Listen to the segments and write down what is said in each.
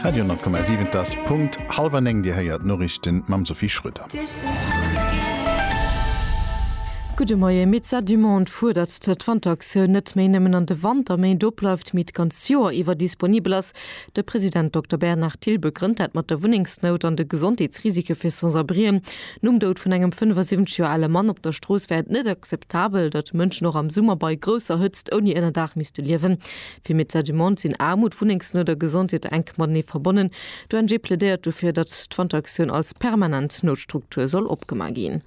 Radio 10,7 Et ass Punkt hallwer 9, Dir héiert d'Noriichten mam Sophie Schröder. Gudde Moien, Médecins du Monde fuerdert, datt d'Wanteractioun net méi nëmmen an de Wanterméint obleift, mee d'ganz Joer iwwer disponibel ass. De President Dokter Bernard Thill begrënnt dat mat der Wunnengsnout an de Gesondheetsrisike fir Sans-abrien. Nom Doud vun engem 75 Joer ale Mann op der Strooss wär et net akzeptabel, datt Mënschen och am Summer bei grousser Hëtzt ouni Ënnerdaach misste liewen. Fir Mitt Sediment sinn Aarmut, Wunnengsnout a Gesondheet enk matenee verbonnen. D'ONG plädéiert dofir, datt d'Wanteraktioun als permanent Noutstruktur soll opgema ginn.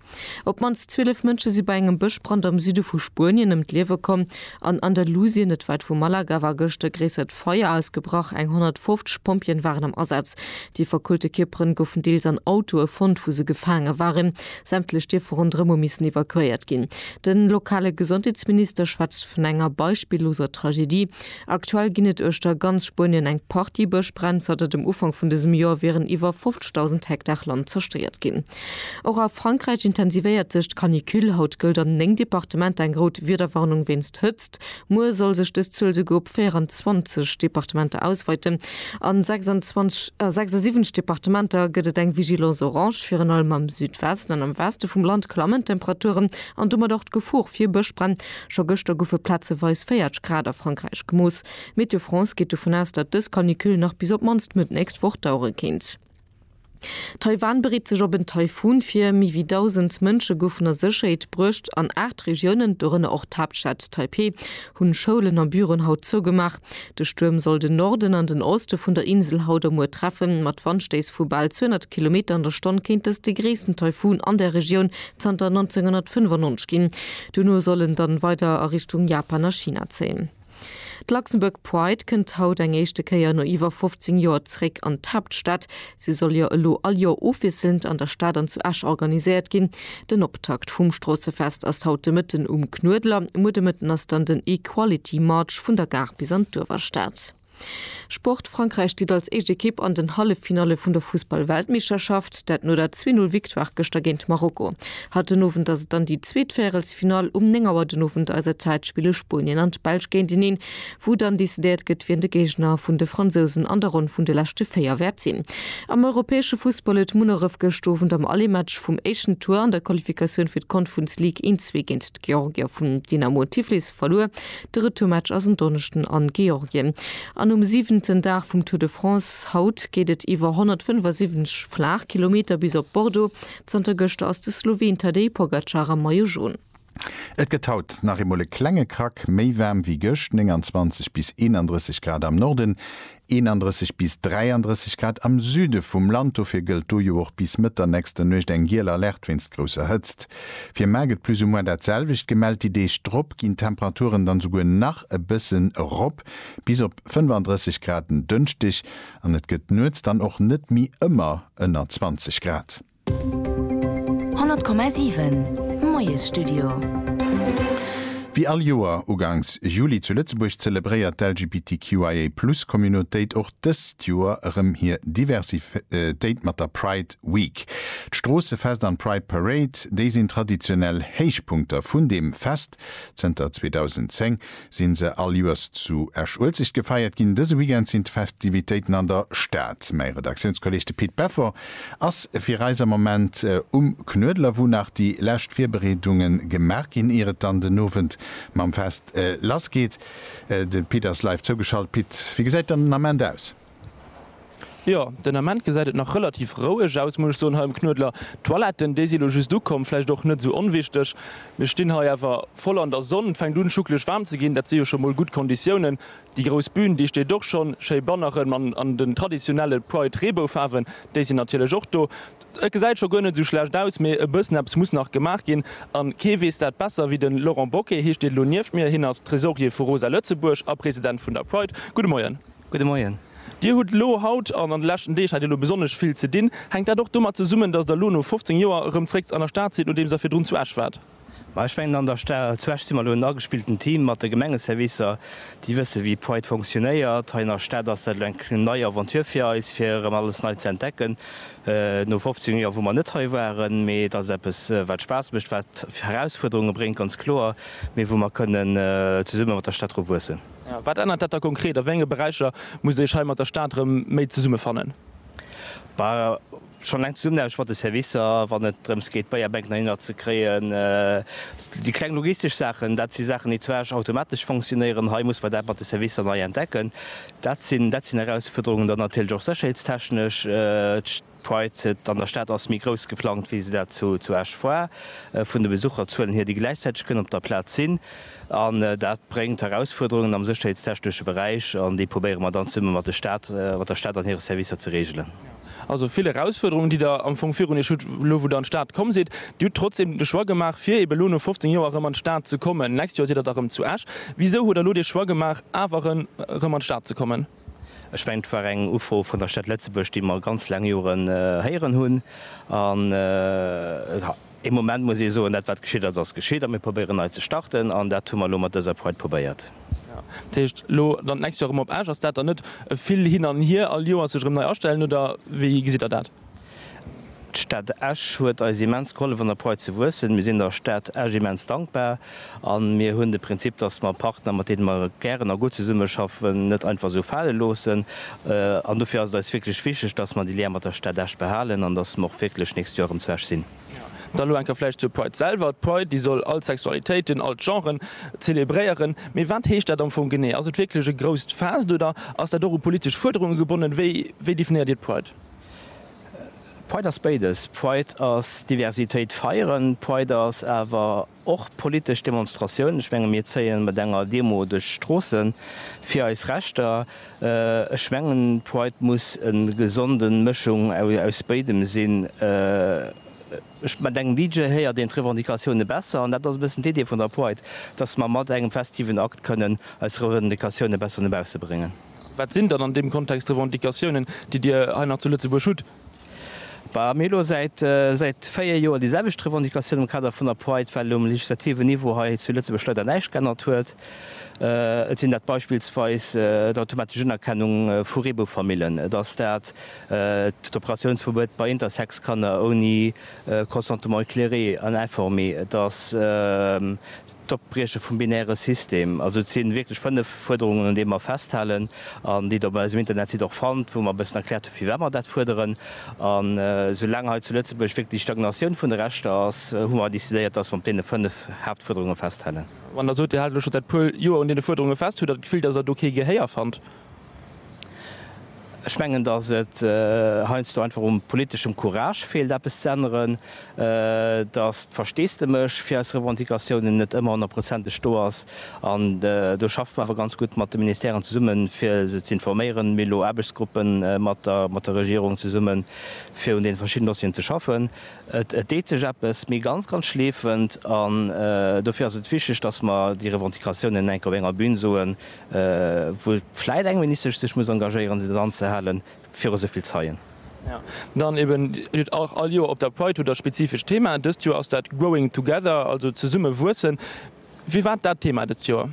Op d'mannst 12 Mënsche si bei engem Bëschbrand am Süde vu Spuenien ëm d'Liewe komm. An Andalusien, net wäit vu Malaga, war gëscht e gréissert Feier ausgebrach. Eng 150 Pompjeeën waren am Asaz. Déi verkohlte Kierperen goufen deels an Autoe fonnt, wou se gefaange waren. Sämtlech Dierfer ronderëm hu missen evakuéiert ginn. De lokale Gesondheetsminister schwätzt vun enger beispilloser Tragedie. Aktuell ginn et uechter ganz Spuenien eng Partie Bëschbränn. Zanter dem Ufank vun dësem Joer wieren iwwer 50.000 Hektar Land zerstéiert ginn. Och a Frankräich intensivéiert sech d'Canicule. Haut gëllt an néng Departementer eng rout Wiederwarnung wéinst Hëtzt. Muer soll sech dës Zuel souguer op 24 Departementer ausweiten. A 76 Departementer gëtt et eng Vigilance orange. Virun allem am Südwesten an am Weste vum Land klammen d'Temperaturen an domat och d'Gefor fir Bëschbränn. Scho gëschter goufe plazeweis 40 Grad a Frankräich gemooss. Météo France geet dovun aus, datt dës Canicule nach bis op d'mannst Mëtt nächst Woch dauere kéint. Taiwan bereet sech op en Taifun vir, méi wéi 1.000 Mënsche goufen a Sécherheet bruecht an aacht Regiounen, dorënner och d'Haaptstad Taipeh, hunn Schoulen a Büroen haut zougemaach. De Stuerm soll den Norden an den Oste vun der Insel haut a muer treffen. Mat Wandstéiss vu bal 200 Kilometer an der Stonn kéint dëst de gréissten Taifun an der Regioun zanter 1995 ginn. Dono soll en dann weider a Richtung Japan a China zéien. D'Luxembourg Pride kënnt haut eng éischte Kéier no iwwer 15 Joer zréck an d'Haaptstad. Si soll jo elo all Joer ofwiesselnd an der Stad an zu Esch organiséiert ginn. Den Optakt vum Stroossefest ass haut de Mëtten um Knuedler. Muer de Mëtten ass dann den Equality March vun der Gare bis an d'Uewerstad. Sport, Frankräich steet als éischt Ekipp an den Halleffinalle vun der Fussball-Weltmeeschterschaft, dat no der Zwee-Null-Victoire gëschter géint Marokko. Haut den Owend ass et dann déi zweet Véierelsfinall. Um 9 Auer den Owend eiser Zäit spille Spuenien an d'Belsch géinteneen, wou dann decidéiert gëtt, wien de Géigner vun de Fransousen an der Ronn vun de leschte véier wäert sinn. Am europäesche Fussball huet Munneref gëscht Owend am Allematch vum éischten Tour an der Qualifikatioun fir d'Confrence League een Zwee géint d'Georgier vun Dynamo Tiflis verluer. De Retourmatch ass en Donneschden a Georgien an um siwenten Dag vum Tour de France. Haut geet et iwwer 175 Flaachkilometer bis op Bordeaux. Zanter gëschter ass de Sloween Tadej Pogacar am Maillot Jaune. Et gëtt haut nach eemol e klenge Krack méi waarm wéi gëscht, 29 bis 31 Grad am Norden, 31 bis 33 Grad am Süde vum Land, dofir gëllt do jo och bis Mëtt der nächster Nuecht eng giel Alerte wéinst grousser Hëtzt. Fir Mar gëtt plus ou moins dat selwecht gemellt, déi Deeg drop ginn d'Temperaturen dann souguer nach e bëssen erop, bis op 35 Grad en Dënschdeg, an et gëtt nuets dann och net méi ëmmer ënner 20 Grad. 100,7 Moiesstudio. Wéi all Joer ugangs Juli zu Lëtzebuerg zelebréiert d'LGBTQIA Plus Communautéit och dëst Joer erëm hir Diversitéit mat der Pride Week. D'Stroossefest an d'Pride Parade, déi sinn traditionell Héichpunkter vun deem Fest zënter 2010, sinn se all Joers zu Esch-Uelzecht gefeiert ginn. Dëse Weekend sinn d'Festivitéiten an der Stad. Mäi Redaktiounskolleeg, de Pit Beffort, ass fir eis am Moment um Knuedler, wou nach déi lescht Virbereedunge gemaach ginn, ier et dann den Owend mam Fest lass geet. De Pit ass live zougeschalt. Pit, wéi gesäit den Ament aus? Jo, den Ament gesäit et nach relativ roueg aus, muss ech soen, hei um Knuedler. D'Toiletten, déi si lo just ukomm, vläicht och net sou onwichteg. Mir stinn hei awer voll an der Sonn, et fänkt un schucklech waarm ze ginn, dat si jo scho mol gutt Konditiounen. Déi grouss Bün, déi steet och schonn, schéi Banneren an den traditionelle Pride-Reeboufaarwen, déi sinn natierlech och do. Et gesäit scho guer net sou schlecht aus, mee e bëssen eppes muss nach gemaach ginn an kee weess dat besser wéi den Laurent Bocquet, hie steet lo nieft mir, hien ass Tresorier vu Rosa Lëtzebuerg a President vun der Pride. Gudde Moien. Gudde Moien. Dir hutt elo haut an an de leschten Deeg hat Dir elo besonnesch vill ze dinn. Hänkt dat och domat zesummen, datt Der elo no 15 Joer erëm zréck an der Stad sidd, nodeems Der virdrun zu Esch waart? Ma ech mengen, an der Sta zu Esch si mer elo en agespillten Team mat de Gemengeservicer, déi wëssen, wéi Pride fonctionnéiert. Hei an der Stad ass dat elo eng nei Aventure fir eis, fir erëm alles nei ze entdecken no 15 Joer, wou mer net hei waren. Mee et ass eppes, wat Spaass mécht, wat Herausfuerderunge bréngt, ganz kloer, mee wou mer kënnen zesumme mat der Stad dru wuessen. Wat ännert dat da konkret? A wéi enge Beräicher musst Dir Iech hei mat der Stad erëm méi zesummefannen? Schonn eleng d'Zesummenaarbecht mat de Servicer, wann et drëms geet d'Beierbänken heihinner ze kréien. Déi kleng logistesch Saachen, dat si Saachen, déi zwar automatesch fonctionnéieren. Hei muss mer dat mat de Servicer nei entdecken. Dat sinn Erausfuerderungen. Dann natierlech och sécherheetstechnesch. Pride an der Stad ass méi grouss geplangt, wéi se dat zu Esch war. Vun de Besucherzuelen hier, déi gläichzäiteg kënnen op der Plaz sinn. An dat bréngt Erausfuerderungen am sécherheetstechnesche Beräich, an déi probéiere mer dann zesumme mat der Stad an hire Servicer ze reegelen. Also vill Erausfuerderungen, déi Der am Fong virun Iech hutt, elo wou Der an d'Stad komm sidd. Dir hutt trotzdeem de Choix gemaach, fir eeben elo no 15 Joer erëm an d'Stad ze kommen. D'nächst Joer sidd Der da erëm zu Esch. Wisou hutt Der elo dee Choix gemaach, awer erëm an d'Stad ze kommen? Ech mengen, et war eng Ufro vun der Stad Lëtzebuerg, déi mer ganz laang Joren héieren hunn. An e Moment muss ee soen, dat wat geschitt ass, ass geschitt a mir probéieren nei ze starten. An dat hu mer elo mat dëser Pride probéiert. Dat heescht, elo dann d'nächst Joer erëm op Esch. Ass dat dann net e vill hin an hier, all Joer sech erëm nei astellen, oder wéi gesitt Der dat? D'Stad Esch huet eis immens gehollef an der Pride ze wuessen. Mir sinn der Stad Esch immens dankbar a mir hunn de Prinzip, dass mer Partner, mat deene mer gären a gutt zesummeschaffen, net einfach esou fale loossen. An dofir ass et eis wierklech wichteg, dass mer de Lien mat der Stad Esch behalen an dass mer och wierklech d'nächst Joer erëm zu Esch sinn. Da elo eng Kéier vläicht zur Pride selwer. D'Pride, déi soll all d'Sexualitéiten, all d'Genren zelebréieren. Mee wat heescht dat am Fong genee? Ass et wierklech e grousst Fest oder ass dat och u politesch Fuerderunge gebonnen? Wéi definéiert Dir d'Pride? Pride ass béides. Pride ass Diversitéit feieren. Pride ass awer och politesch Demonstratioun. Ech menge mir zéie mat enger Demo duerch d'Stroosse fir eis Rechter. Ech mengen Pride muss e gesonde Mëschung aus béidem sinn. Ech mat engem DJ héiert een d'Revendicatioune besser. An dat ass e bëssen d'Idee vun der Pride, datt mer mat engem festiven Akt kënnen eis Revendicatioune besser no bausse bréngen. Wat sinn dann an deem Kontext d'Revendicatiounen, déi Dir hei nach zu Lëtzebuerg hutt? Bah, mir hu lo säit, säit véier Joer déi selwecht Revendicatioun am Kader vun der Pride, well um legislativen Niveau hei zu Lëtzebuerg leider näischt geännert huet. Et sinn dat beispillsweis d'automatesch Unerkennung vu Reebou-Famillen, et ass dat d'Operatiounsverbuet bei Intersex-Kanner ouni Consentement éclairé an informé, et ass. d'Opbrieche vum binäre System. Also et sinn wierklech 5 Fuerderungen un deem mer festhalen an déi der op eisem Internetsite och fannt, wou mer e bëssen erkläert hunn firwat mer dat fuerderen. An esou laang hei zu Lëtzebuerg wierklech Stagnatioun vun de Rechter ass, hu mer decidéiert, dass mer op deene 5 Haaptfuerderunge festhalen. Wann der sot, Dir haalt elo scho säit e puer Joer un deene Fuerderunge fest, hutt der d'Gefill, dass der do kee Gehéier fannt? Ech mengen, datt et heiansdo einfach u politeschem Courage feelt, eppes ze änneren, datt d'Versteesdemech fir eis Revendicatiounen net ëmmer honnertprozenteg do ass. An do schaffe mer awer ganz gutt mat de Ministèren zesummen, fir se ze informéieren. Mir hu elo Aarbechtsgruppen mat der Regierung zesummen, fir un deene verschidden Dossieren ze schaffen. Et deet sech eppes, mee ganz, ganz schleefend. An dofir ass et wichteg, datt mer déi Revendicatiounen enk op enger Bühn soen, wou vläit eng Ministesch sech muss engagéieren, se dann ze halen, viru esou vill Zeien. Dann eben, Dir hutt och all Joer op der Pride hutt Der spezifesch Themaen. Dëst Joer ass dat Growing Together, also zesumme wuessen. Firwat dat Thema dëst Joer?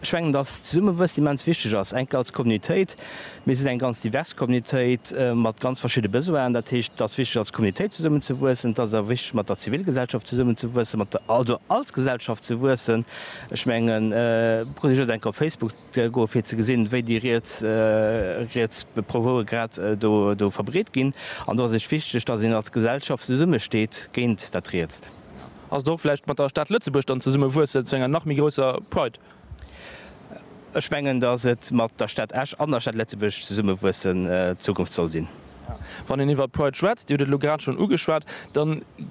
Ech mengen, dass d'Zesummewuess immens wichteg ass, enk als Communautéit. Mir sinn eng ganz divers Communautéit mat ganz verschidde Besoinen. Dat heescht, et ass wichteg, als Communautéit zesummen ze wuessen. Et ass awer wichteg, mat der Zivilgesellschaft zesummen ze wuessen, also als Gesellschaft ze wuessen. Ech mengen, brauch Dir just eng Kéier op Facebook ze goen, fir ze gesinn, wéi déi riets, riets Proposen grad do, do verbreet ginn. An do ass et wichteg, datt een als Gesellschaft zesummesteet géint dat Rietst. Ass et och vläicht mat der Stad Lëtzebuerg dann zesummewuesse zu enger nach méi grousser Pride? Ech mengen, datt et mat der Stad Esch an der Stad Lëtzebuerg zesummewuessen d'Zukunft soll sinn. Wann een iwwer Pride schwätzt, Dir hutt et elo grad schonn ugeschwat, da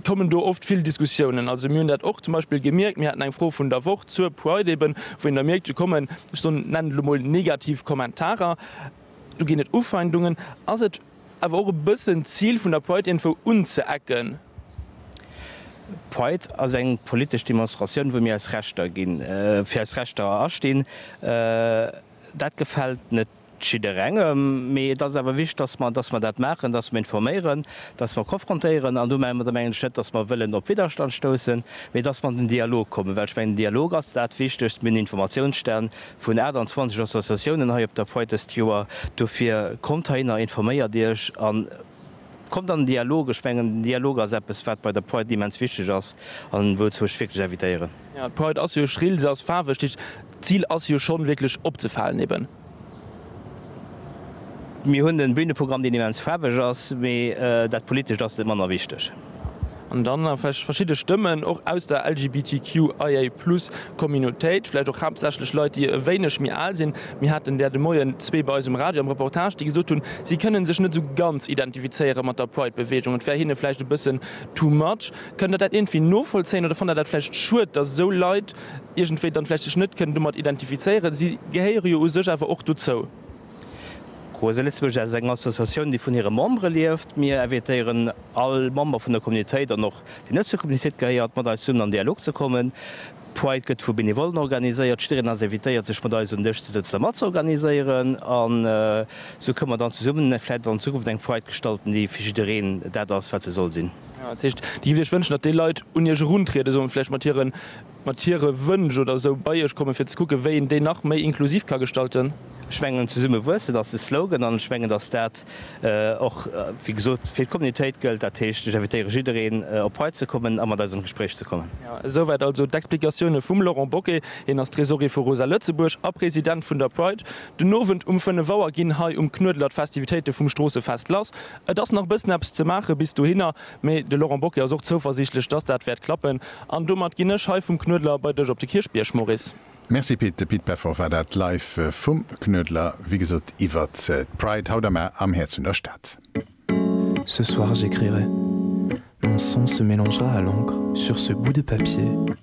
kommen do oft vill Diskussiounen. Also mir hunn dat och zum Beispill gemierkt, mir haten eng Fro vun der Woch zur Pride eben, wou een da mierkt, do kommen, ech soen, nennen et elo mol negativ Kommentarer, do ginn et Ufeindungen. Ass et awer och e bëssen d'Zil vun der Pride iergendwou unzeecken? D'Pride ass eng politesch Demonstratioun, wou mir eis Rechter ginn, fir eis Rechter astinn. Dat gefält net jidderengem, mee et ass awer wichteg, dass mer, dass mer dat maachen, dass mer informéieren, dass mer konfrontéieren. An domadder mengen ech net, dass mer wëllen op Widderstand stoussen, mee dass mer an den Dialog kommen, well ech mengen, den Dialog ass dat Wichtegst. Mir hunn Informatiounsstänn vun 28 Associatiounen hei op der Pride dëst Joer. Dofir kommt heihinner, informéiert Iech an. Kommt an den Dialog, ech mengen den Dialog ass eppes wat bei der Pride immens wichteg ass an wouzou ech wierklech invitéieren. Jo, d'Pride ass jo schrill, se ass faarweg, d'Zil ass jo schonn wierklech opzefalen eben. Mir hunn en Büneprogramm deen immens faarweg ass, mee dat Politescht ass net manner wichteg. An dann nach vläicht verschidde Stëmmen, och aus der LGBTQIA-Plus-Communautéit, vläicht och haaptsächlech Leit, déi e wéineg méi al sinn. Mir haten där de Moien zwee bei eis um Radio am Reportage, déi gesot hunn, si kënnen sech net esou ganz identifizéiere mat der Pride-Beweegung, et wär hinne vläicht e bëssen too much. Kënnt Der dat iergendwéi novollzéien oder fannt Der dat vläicht schued, datt esou Leit iergendwéi dann vläicht sech net kënnen domat identifizéieren? Si gehéiere jo u sech awer och dozou. Rose Lëtzebuerg ass eng Associatioun, déi vun hire Membere lieft. Mir invitéieren all Member vun der Communautéit an och deen net zur Communautéit gehéiert, mat eis zesummen an Dialog ze kommen. D'Pride gëtt vu Benevollen organiséiert. Jiddereen ass invitéiert, sech mat eis un Dësch ze sëtzen a mat ze organiséieren. An esou kënne mer dann zesummen vläicht an Zukunft eng Pride gestalten, déi fir jiddereen dat ass, wat se soll sinn. Dat heescht, Dir gitt Iech wënschen, datt déi Leit un Iech eruntrieden, solle vläicht mat hiren. mat hire Wënsch oder esou bei Iech kommen, fir ze kucken, wéi een déi nach méi inklusiv ka gestalten. Ech mengen, Zesumme wuessen ass de Slogan an ech mengen, datt dat och, wéi gesot, fir d'Communitéit gëllt. Dat heescht, ech invitéiere jiddereen, op hei ze kommen a mat eis an d'Gespréich ze kommen. Esouwäit also d'Explikatioune vum Laurent Bocquet. Hien ass Tresorier vu Rosa Lëtzebuerg a President vun der Pride. Den Owend um 5 Auer ginn hei um Knuedler d'Festivitéite vum Stroossefest lass. Et ass nach e bëssen eppes ze maachen bis dohinner. Mee de Laurent Bocquet ass och zouversiichtlech, dass dat wäert klappen. An domat ginn ech hei vum Knuedler bei dech op de Kierchbierg, Maurice. Merci Pit, de Pit Peffer war dat live vum Knuedler, wéi gesot iwwert d'Pride haut am A am Häerz vun der Stad. Ce soir j'écrirai, mon sang se mélangera à l'encre sur ce bout de papier.